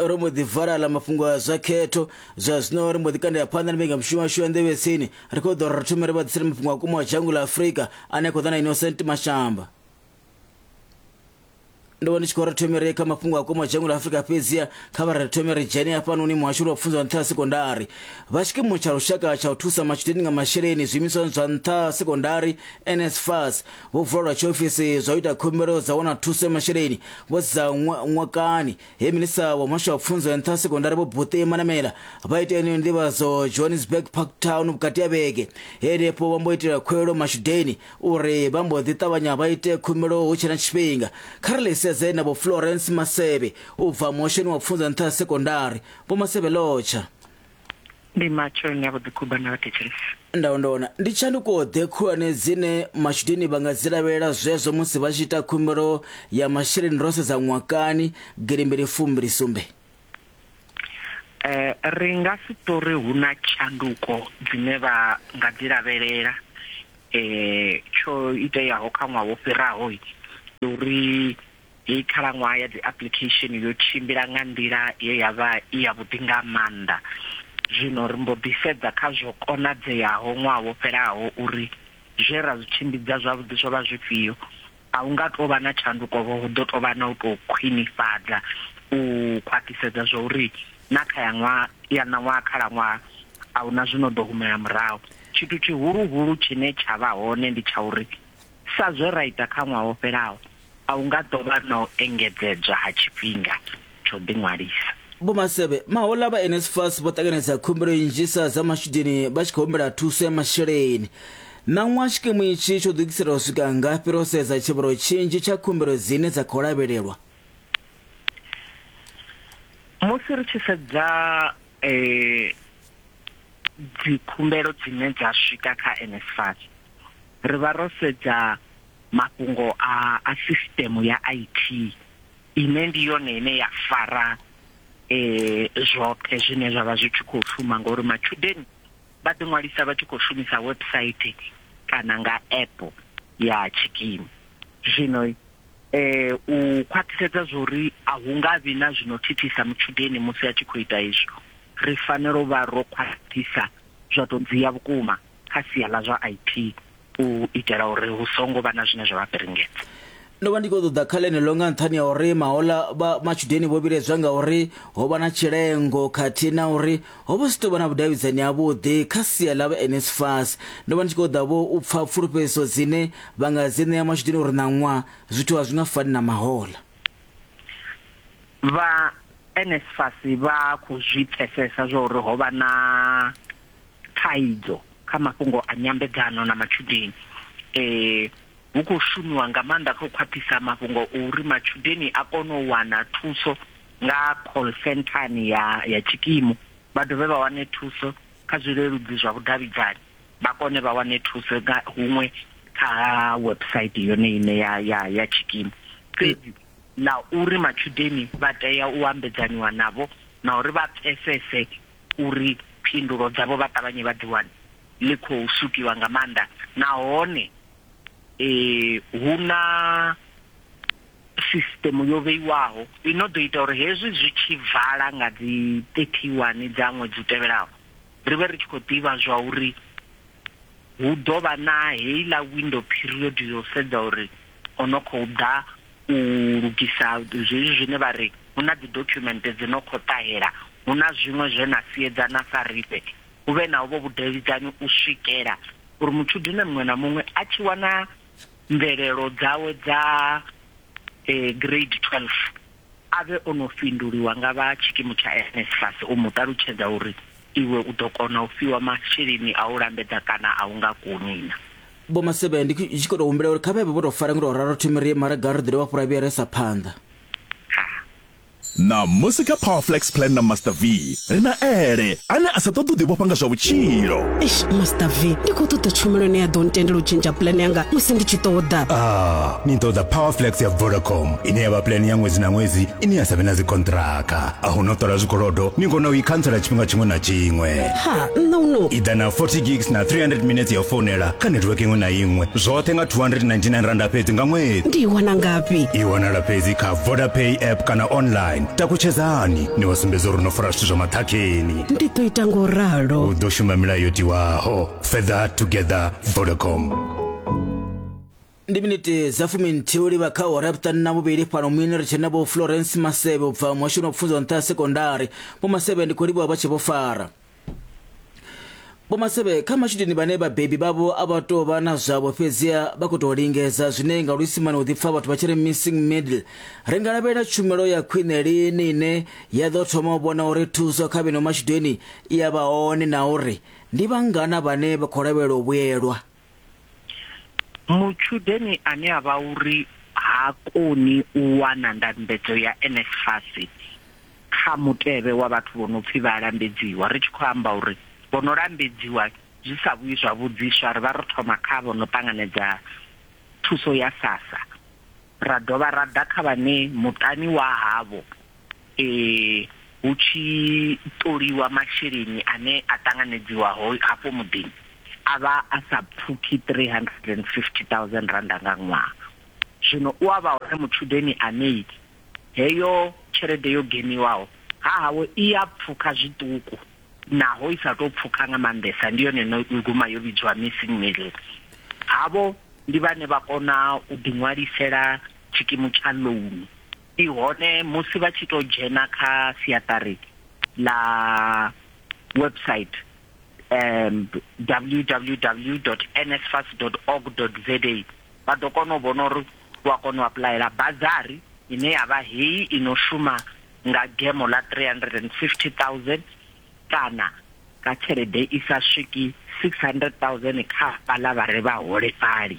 ro mbo ḓi vala ḽa mafhungo a zwa khetho zwa zwino ri mbo ḓi kandela phanḓa na mbekanyamushumo yashu ya nḓevhe tsini ri khou ḓo ri thome ri vha ḓisela mafhungo a kuma a dzhango ḽa afurika ane a khou ḓa na innocent mashamba ndo vha ndi tshi khou ri thome ri kha mafhungo a kuma dzhango ḽa afurika fhedzia kha vha ri thome ri dzhene hafhanoni muhasho lwa pfunzo nṱha ha sekondari vha tshikimu tsha lushaka tsha u thusa matshudeni nga masheleni zwiimiswani zwa nṱha ha sekondari nsfas vhubvo lwa tshiofisi zwa u ita khumbelo dza wana thuso ya masheleni vho dza ṅwakani he minista wa muhasho wa pfunzo ya nṱha sekondari vho buṱe manamela vha ita yeneyo ndivhadzo johannesburg park town vhukati ha vhege henefho vha mbo itela khuwelo mashudeni uri vha mbo ḓi ṱavhanya vha ite khumbelo hu tshe na tshifhinga kha ri ḽi sedze na vho florence maseve u bva muhashoni wa pfunzo ya nṱha sekondari vho maseve lotsha Ndi matsheloni ya vhuḓikhuba na vhathetshelesi. Ndaondona ndi tshanduko-ḓe khulwane dzine matshudeni vha nga dzi lavhelela zwezwo musi vha tshi ita khumbelo ya masheleni ro sedza ṅwakani gidi mbili fumbili sumbe? Ri nga si tou ri hu na tshanduko dzine vha nga dzi lavhelela. Tsho iteaho kha ṅwaha wo fhiraho ndi uri Heyi khalaṅwaha ya dziapuḽikhesheni yo tshimbila nga nḓila ye ya vha i yavhuḓi nga maanḓa. Zwino ri mbo ḓi sedza kha zwo konadzeaho ṅwaha wo fhelaho uri zwe ra zwi tshimbidza zwavhuḓi zwo vha zwifhio. A hu nga tou vha na tshandukovho, hu ḓo tou vha na u tou khwinifhadza u khwaṱhisedza zwa uri na kha ya ṅwaha ya ṋaṅwaha khalaṅwaha a hu na zwi no ḓo humela murahu. Tshithu tshihuluhulu tshine tsha vha hone ndi tsha uri. Sa zwe ra ita kha ṅwaha wo fhelaho, a hu nga ḓo vha na u engedzedzwa ha tshifhinga tsha u ḓiṅwalisa. Vho Masebe Mahola vha NSFAS vho ṱanganedza khumbelo nnzhisa dza matshudeni vha tshi khou humbela thuso ya masheleni. Ṋaṅwaha tshikimu itshi tsho ḓilugiselwa u swika ngafhi ro sedza tshivhalo tshinzhi tsha khumbelo dzine dza khou lavhelelwa? Musi ri tshi sedza dzikhumbelo dzine dza swika kha NSFAS, ri vha ro sedza mafhungo a a sisiteme ya IT ine ndi yone ine ya fara zwoṱhe zwine zwa vha zwi tshi khou shuma ngori matshudeni vha ḓi ṅwalisa vha tshi khou shumisa website kana nga app ya tshikimu zwino u khwaṱhisedza zwori a hu nga vhi na zwino thithisa mutshudeni musi a tshi khou ita izwo ri fanela u vha ro khwaṱhisa zwa to dzia vhukuma kha sia ḽa zwa IT u itela uri hu songo vha na zwine zwa vha piringedza. Ndo vha ndi khou ṱoḓa kha ḽeneḽo nga nṱhani ha uri mahoḽa vha matshudeni vho vhiledzwa nga uri ho vha na tshilengo khathihi na uri ho vha si tou vha na vhudavhidzani havhuḓi kha sia ḽa vha NSFAS. Ndo vha ndi tshi khou ṱoḓa vho u pfa pfulufhedziso dzine vha nga dzi ṋea matshudeni uri ṋaṅwa zwithu a zwi nga fani na mahoḽa. Vha NSFAS vha khou zwi pfesesa zwa uri ho vha na thaidzo kha mafhungo a nyambedzano na matshudeni eh hu khou shumiwa nga maanḓa kha u khwaṱhisa mafhungo uri matshudeni a kone u wana thuso nga call centrani ya ya tshikimu vha dovhe vha wane thuso kha zwileludzi zwa vhudavhidzani vha kone vha wane thuso nga huṅwe kha website yone ine ya ya ya tshikimu fhedzi na uri matshudeni vha tea u ambedzaniwa navho na uri vha pfesese uri phindulo dzavho vha ṱavhanye vha dzi wane ḽi khou shukiwa nga maanḓa nahone hu na sisṱemu yo vheiwaho i no ḓo ita uri hezwi zwi tshi vala nga dzi 31 dza ṅwedzi u tevhelaho ri vhe ri tshi khou ḓivha zwa uri hu ḓo vha na heiḽa window period ya u sedza uri o no khou ḓa u lugisa zwezwi zwine vha ri hu na dzidokhumenthe dzi no khou ṱahela, hu na zwiṅwe zwe na siedzana sa riṋe, hu vhe na hovho vhudavhidzani u swikela uri mutshudeni muṅwe na muṅwe a tshi wana mvelelo dzawe dza Grade 12 a vhe o no fhinduliwa nga vha tshikimu tsha NSFAS u mu ṱalutshedza uri iwe u ḓo kona u fhiwa masheleni a u lambedza kana a u nga koni na. vho masebe ndi tshi khou tou humbela uri kha vhevhe vho tou fara ngo tou ralo thimu ri mara ga ri ḓi dovha fhura vhuya ri sa phanḓa na musi kha power flex plan na master v ri na ele ane a sa ṱoḓi u ḓivhofha nga zwa vhutshilo eish master v ndi khou ṱoḓa tshumelo ine ya ḓo ntendela u tshintsha plan yanga musi ndi tshi ṱoḓa ah ni ṱoḓa power flex ya vodacom ine ya vha plan ya ṅwedzi na ṅwedzi ine ya sa vhe na dzikontraka a hu no ṱola zwikolodo ni kona u i khantsela tshifhinga tshiṅwe na tshiṅwe ha nṋe uno i ḓa na 40 gigs na 300 minutes ya founela kha network iṅwe na iṅwe zwoṱhe nga 299 randa fhedzi nga ṅwedzi ndi i wana ngafhi i wanala fhedzi kha vodapay app kana online takutshedzani ni vha sumbedza uri no fara zwithu zwa maṱhakheni ndi ḓo ita ngo ralo u ḓo shuma milayo yo tiwaho further together vodacom ndi miniti dza fuminthihi u livha kha awara ya vhuṱanu na vhuvhili fhano muyeni ri tshena vho florence masevhe u bva muhashoni wa pfunzo nṱha ya sekondari vho masevhe ndi khou livhuwa vha tshi vho fara vho masevhe kha matshudeni vhane vhabebi vhavho a vha tou vha na zwavho fhedziha vha khou tou lingedza zwine nga luisimane u ḓipfa vhathu vha tshi ri missing middle ri nga lavhelela tshumelo ya khwine lini ine ya ḓo thoma u vhona uri thuso kha vheno matshudeni i ya vha hone na uri ndi vhangana vhane vha khou lavhelela u vhuyelwa Mutshudeni ane a vha uri ha koni u wana ndambedzo ya NSFAS kha mutevhe wa vhathu vho no pfi vha a lambedziwa, ri tshi khou amba uri vho no lambedziwa zwi sa vhuyi zwa vhudziswa, ri vha ro thoma kha vho no ṱanganedza thuso ya SASSA ra dovha ra ḓa kha vhane muṱani wa havho eh, hu tshi ṱoliwa masheleni ane a ṱanganedziwa ho hafho muḓini a vha a sa pfuki 350000 randa nga ṅwaha zwino u a vha hone mutshudeni ane heyo tshelede yo geniwaho ha hawe i a pfuka zwiṱuku naho i sa tou pfuka nga maanḓesa ndi yone no guma yo vhidzwa missing middle havho ndi vhane vha kona u ḓiṅwalisela tshikimu tsha loan ndi hone musi vha tshi to dzhena kha siaṱari ḽa website um www.nsfas.org.za vha ḓo kona u vhona uri u a kona u apuḽayela bazari ine ya vha heyi i no shuma nga gemo ḽa 350000 kana nga tshelede i sa swiki 600000 kha vhaḽa vha re vhaholefhali.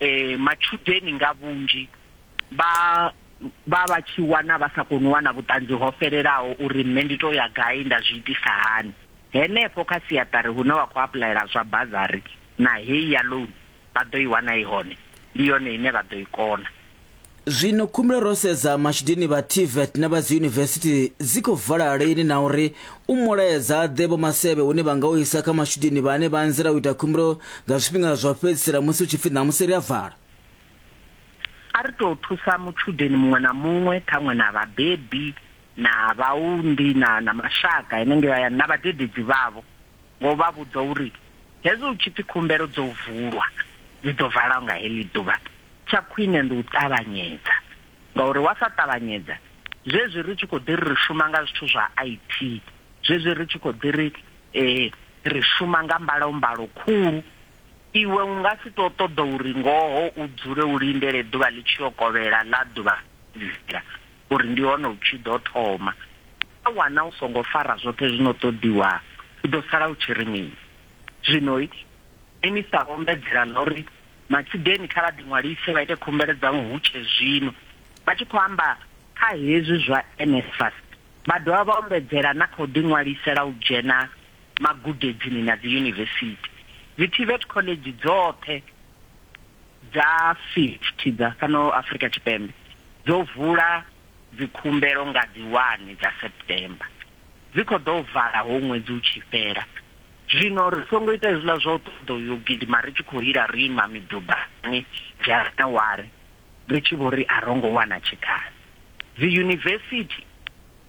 eh matshudeni nga vhunzhi vha vha vha tshi wana vha sa koni u wana vhuṱanzi ho fhelelaho uri nṋe ndi to ya gai nda zwi itisa hani henefho kha siaṱari hune wa khou apuḽayela zwa bazari na heyi ya loan vha ḓo i wana i hone ndi yone ine vha ḓo i kona. Zwino khumbula ro sedza matshudeni vha TVET na vha dzi yunivesithi dzi khou vala lini na uri u mulaedza ḓe vho masevhe hune vha nga u isa kha matshudeni vhane vha anzela u ita khumbelo nga zwifhinga zwa fhedzisela musi hu tshi pfi ṋamusi ri a vala. A ri tou thusa mutshudeni muṅwe na muṅwe, ṱhaṅwe na vhabebi na vhaunḓi na na mashaka henengei hayani na vhadededzi vhavho, nga u vha vhudza uri hezwi hu tshi pfi khumbelo dzo vulwa, dzi ḓo valwa nga heḽi ḓuvha. Tsha khwine ndi u ṱavhanyedza ngauri wa sa ṱavhanyedza zwezwi ri tshi khou ḓi ri ri shuma nga zwithu zwa IT, zwezwi ri tshi khou ḓi ri ri shuma nga mbalombalo khulu, iwe u nga si tou ṱoḓa uri ngoho u dzule u lindele ḓuvha ḽi tshi yo kovhela ḽa ḓuvha iḽa uri ndi hone u tshi ḓo thoma. Wa wana u songo fara zwoṱhe zwi no ṱoḓiwaho, u ḓo sala u tshi ri mini? Zwino Minisiṱa vho ombedzela ḽa uri Matshudeni kha vha ḓiṅwalise vha ite khumbelo dzavho hu tshe zwino. Vha tshi khou amba kha hezwi zwa NSFAS, vha dovha vha ombedzela na kha u ḓiṅwalisela u dzhena magudedzini na dziyunivesithi. Dzi TVET khoḽedzhi dzoṱhe dza 50 dza fhano Afrika Tshipembe dzo vula dzikhumbelo nga dzi 1 dza September, dzi khou ḓo vala ho ṅwedzi u tshi fhela. Zwino ri songo ita hezwiḽa zwa u ṱoḓa u yo gidima ri tshi khou lila ro ima midubani, dzharaṱawari, ri tshi vho ri a ro ngo wana tshikhala. Dziyunivesithi,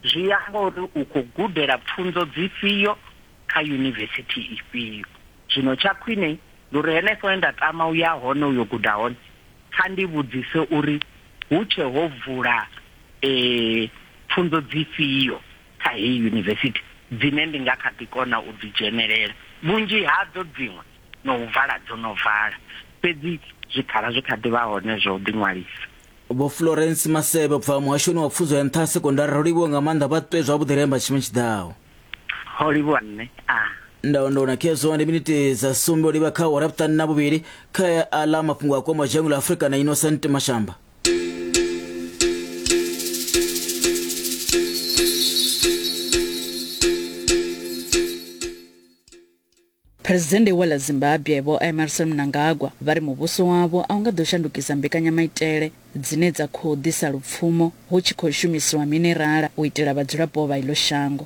zwi ya nga uri u khou gudela pfunzo dzifhio kha yunivesithi ifhio. Zwino tsha khwine ndi uri henefho he nda tama u ya hone u yo guda hone, kha ndi vhudzise uri hu tshe ho vula pfunzo dzifhio. kha heyi yunivesithi dzine ndi nga kha ḓi kona u dzi dzhenelela. Vhunzhi hadzo dziṅwe na u vala dzo no vala, fhedzi zwikhala zwi kha ḓi vha hone zwa u ḓiṅwalisa. Vho Florence Masebe u bva Muhashoni wa Pfunzo ya Nṱha ha Sekondari, Ro livhuwa nga maanḓa, vha ṱwe zwavhuḓi ri amba tshifhinga tshi ḓaho. Ho livhuwa nṋe. A. Ndayondo na khezwo ndi miniti dza sumbe u livha kha awara ya vhuṱanu na vhuvhili kha a ḽa mafhungo a kwamaho dzhango ḽa Afrika na Innocent Mashamba. Phresidennde wa ḽa Zimbabwe Vho Emmerson Mnangagwa vha ri muvhuso wavho a u nga ḓo shandukisa mbekanyamaitele dzine dza khou ḓisa lupfumo hu tshi khou shumisiwa minerala u itela vhadzulapo vha iḽo shango.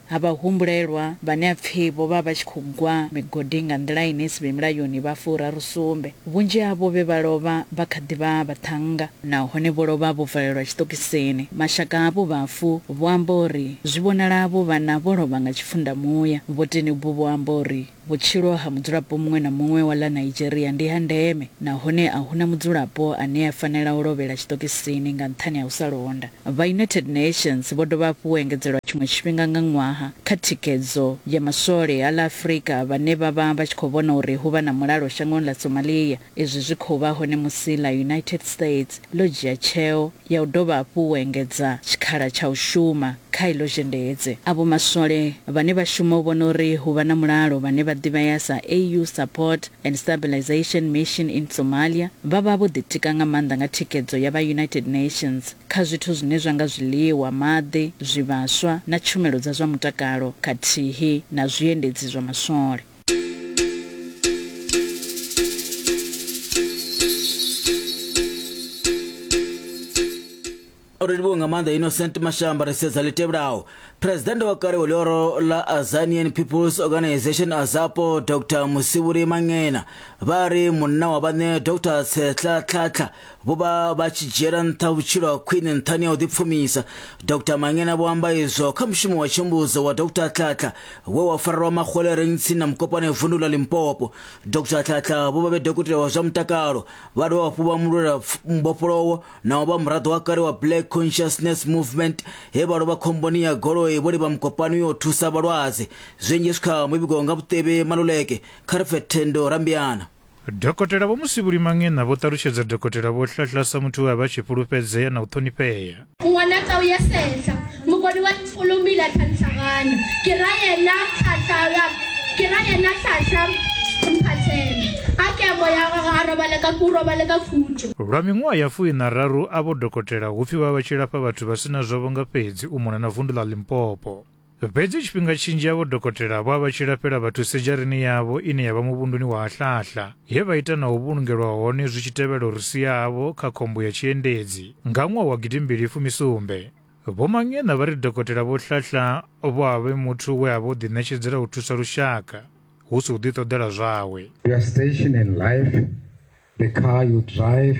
ha vhahumbulelwa vhane ha pfi vho vha vha tshi khou gwa migodini nga nḓila ine i si vhe mulayoni vha furaru sumbe. Vhunzhi havho vhe vha lovha vha kha ḓi vha vhaṱhannga nahone vho lovha vho valelwa tshiṱokisini. Mashaka avho vhafu vho amba uri zwi vhonala avho vhana vho lovha nga tshifhundamuya. Vhoteni uvhu vho amba uri. Vhutshilo ha mudzulapo muṅwe na muṅwe wa ḽa Nigeria ndi ha ndeme nahone a hu na mudzulapo ane a fanela u lovhela tshiṱokisini nga nṱhani ha u sa londa. Vha United Nations vho dovha hafhu u engedzelwa tshiṅwe tshifhinga nga ṅwaha kha thikhedzo ya maswole a ḽa Afrika vhane vha vha vha tshi khou vhona uri hu vha na mulalo shangoni ḽa Somalia. Izwi zwi khou vha hone musi ḽa United States ḽo dzhia tsheo ya u dovha hafhu u engedza tshikhala tsha u shuma kha iḽo zhendedzi. Avho maswole vhane vha shuma u vhona uri hu vha na mulalo vhane vha ḓivhea sa AU Support and Stabilisation Mission in Somalia vha vha vho ḓitika nga maanḓa nga thikhedzo ya vha United Nations kha zwithu zwine zwa nga zwiḽiwa, maḓi, zwivhaswa na tshumelo dza zwa mutakalo khathihi na zwiendedzi zwa maswole. uri livhuwe nga maanḓa innocent mashamba ri sedza ḽi tevhelaho phuresidennde wa kale wa ḽioro la azanian peoples organization azapo dr musivhuri mangena vha ri munna wa vhaṋe dr tshetlatlhatlha vho vha vha tshi dzhiela nṱha vhutshilo ha khwine nṱhani ha u ḓipfumisa dr mangena vho amba izwo kha mushumo wa tshumbudzo wa dr tlhatla we wa farelwa maxwele reng tsini na mukopane vundu la limpopo dr tlhatla vho vha vhe dokotela wa zwa mutakalo vha dovha hafhu vha mulwela mbofholowo naho vha muraḓo wa kale wa black consciousness movement he vha lovha khomboni ya goloi vho livha mukopani yo thusa vhalwadze zwinzhi zwi kha muvhigo nga vhuṱevhe maluleke kha ri pfe thendo rambiana Dokotela Vho Musibuli Manghena vho ṱalutshedza Dokotela Vho Hlahla sa muthu we a vha a tshi fhulufhedzea na u ṱhonifhea. Ngwana tau ya sehla mugodi wa ntfulumila thantlhagana ke ra yena tlhatlhala ke ra yena tlhatlha mphathela a ke moya gagwe a robale ka ku robale ka khutšo. Lwa miṅwaha ya fuiṋararu avho dokotela hu pfi vha vha vha tshi lafha vhathu vha si na zwavho nga fhedzi u mona na vundu ḽa Limpopo. Fhedzi tshifhinga tshinzhi avho dokotela vha vha tshi lafhela vhathu sedzharini yavho ine ya vha muvhunduni wa Hahlahla, he vha ita na u vhulungelwa hone zwi tshi tevhela uri sia havho kha khombo ya tshiendedzi nga ṅwaha wa gidimbili fumi sumbe. Vho Mangena vha ri dokotela Vho Hlahla vho a vhe muthu we a vha o ḓiṋetshedzela u thusa lushaka hu si u ḓiṱoḓela zwawe. Your station in life, the car you drive,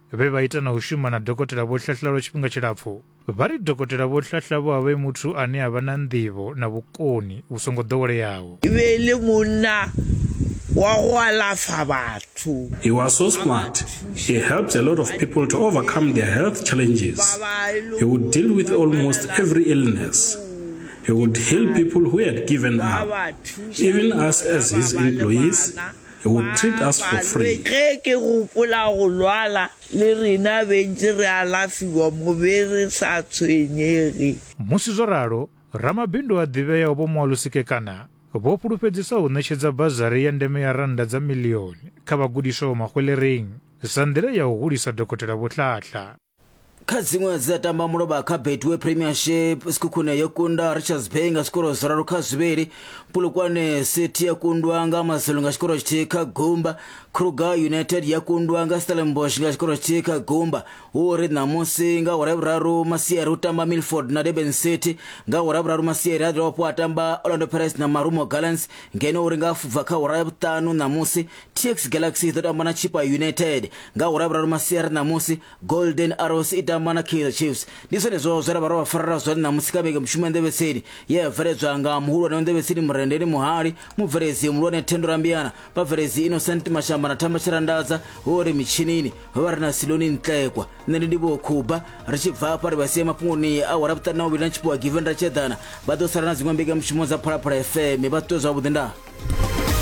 vhe vha ita na u shuma na Dokotela Vho Hlahla lwa tshifhinga tshilapfu, vha ri Dokotela Vho Hlahla vho a vha e muthu ane a vha na nḓivho na vhukoni vhu songo ḓoweleaho. E be e le monna wa go alafa batho. He was so smart, he helped a lot of people to overcome their health challenges. He would deal with almost every illness. He would heal people who had given up. Even us as his employees, He would treat us for free. Ge ke gopola go lwala le rena bentši re alafiwa mo be re sa tshwenyege. Musi zwo ralo, ramabindu a ḓivheaho Vho Moalusi Kekana vho fhulufhedzisa u ṋetshedza bazari ya ndeme ya rannda dza miḽioni kha vhagudiswa vha Mahwelering sa nḓila ya u hulisa Dokotela Vho Hlahla. kha dziṅwe dzi a tamba mulovha kha betway premiership sikhukhune yo kunda richards bay nga zwikoro zwiraru kha zwivhili pulukwane city ya kundwa nga mazulu nga tshikoro tshithihi kha gumba kruger united ya kundwa nga stellenbosch nga tshikoro tshithihi kha gumba hu ri ṋamusi nga hora vhuraru masiari u tamba milford na durban city nga hora vhuraru masiari a dovha hafhu a tamba orlando pirates na marumo gallants ngeno uri nga fubva kha hora ya vhuṱanu ṋamusi tx galaxy i ḓo tamba na chipa united nga ura vhuraru masiari ṋamusi golden arrows i tamba na kaizer chiefs ndi zwenezwo zwe ra vha ro vha farela zwone ṋamusi kha vhege mushumo ya nḓevhetseni ye ya bveledzwa nga muhulwane wa nḓevhetseni murendeni muhali mubveledzi muhulwane thendo rambiana vhabveledzi innocent mashamba na thamba tshirandadza ho ri mitshinini ho vha ri na siloni ntlekwa nṋe ndi ndivho khuba ri tshi bva hafha ri vha sie mafhungoni a wara vhuṱanu na vhuvhili na tshiphiwa given ra tshedana vha ḓo sala na dziṅwe mbekanyamushumo dza phalaphala fm vha ṱuṱuwedzwa vhuḓi ndaa